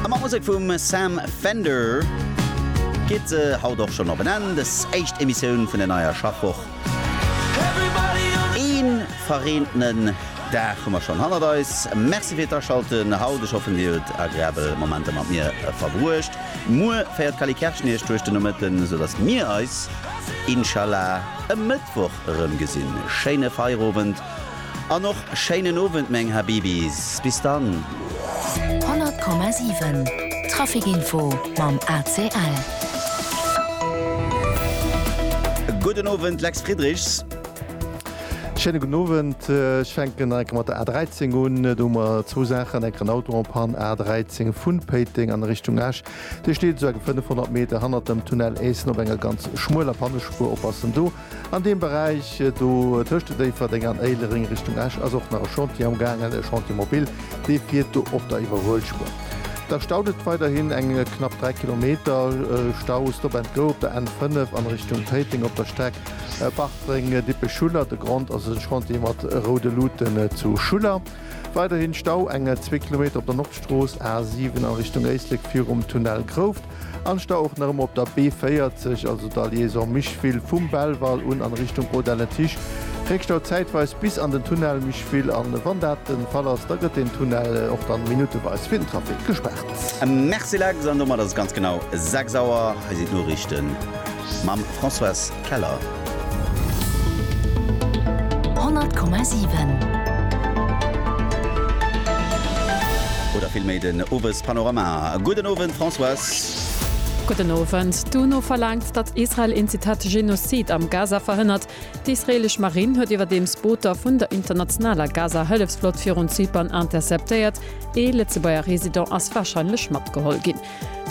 A mat Musek vum Sam Fender geet se haut och schonn op en Enn, des éischt Emissioun vun der neier Schaffwoch. Ee verreentenen Dag hu mer schonn hannert eis. Merci fir d'Aschalten haut. Ech hoffen, Dir hutt agreabel Momenter mat mir verbruecht. Muer féiert d'Cally Kerschen Iech duerch den Nomëtten, sou datt mir eis, Inshallah, e Mëttwoch erëm gesinn. Schéine Feierowend An och schéinen Owend meng Habibis. Bis dann. 100,7 Trafic Info mam ACL. Gudden Owend, Lex Friedrichs. Schéine gudden Owend. Ech fänken enke mat der A13 un. Do hu mer zwou Saachen, enker en Auto en Panne, A13 vun Péiteng an Richtung Esch. Dee steet esou enke 500 Meter hannert dem Tunnel Éissen op enger ganz schmueler Pannespuer. Oppassen do. An deem Beräich do tëscht Déifferdeng an Éilereng Richtung Esch ass och nach e Chantier am gaangen, e Chantier mobile, dee fiert do op der Iwwerhuelspuer. Da staut et weiderhin eng knapp 3 Kilometer. Stau, Stop and Go op der N5 an Richtung Téiteng op der Streck Bartreng, Dippech, Schuller. De Grond ass e Chantier mat roude Luuten zu Schuller. Weiderhin Stau, eng zwee Kilometer op der Nordstrooss A7 an Richtung Éislek virum Tunnel Grouft. an sta och nach ëmmer op der B40, also der Liaison Micheville vum Belval un an Richtung Haut d'Aletiche. Réckstau zäitweis bis an den Tunnel Micheville an wann dat den Fall ass, da gëtt den Tunnel och dann minuteweis fir den Trafic gespaart. Merci Lex, an domat ass et ganz genau 6 Auer. Hei sinn d'Noriichten. Mam Françoise Keller. 100,7. Oder vill méi den Owespanorama. Gudden Owend Françoise. Gudden Owend. D'UNO verlaangt, datt Israel een, Zitat, Genozid am Gaza verhënnert. D'israeelesch Marinn huet iwwerdeems Booter vun der internationaler Gaza-Hëllefsflott virun Zypern interceptéiert. Ee Lëtzebuerger Resident ass warscheinlech matgeholl ginn.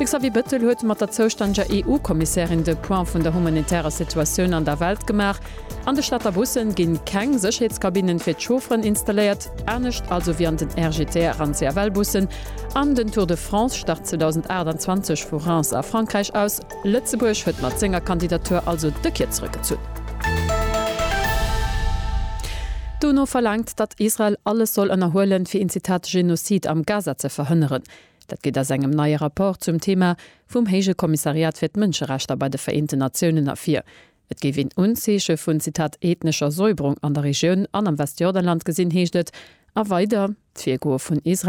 De Xavier Bettel huet mat der zoustännege EU-Kommissärin de Point vun der humanitärer Situatioun an der Welt gemaach. An de Stater Bussen ginn keng Sécherheetskabinnen fir d'Chaufferen installéiert, anescht also wéi an den RGTR an CFL-Bussen. An den Tour de France start 2028 vu Reims a Frankräich aus. Lëtzebuerg huet mat senger Kandidatur also de Kier zrëckgezunn. D'UNO verlaangt, datt Israel alles soll ënnerhuelen, fir een Zitat Genozid am Gaza ze verhënneren. Dat geet aus engem neie Rapport zum Thema vum Héije Kommissariat fir d'Mënscherechter bei de Vereenten Natiounen ervir. Et géif een Unzeeche vun, Zitat, ethnescher Säuberung an der Regioun an am Westjordanland gesinn, heescht et a weider, D'Virgoe vun Israel,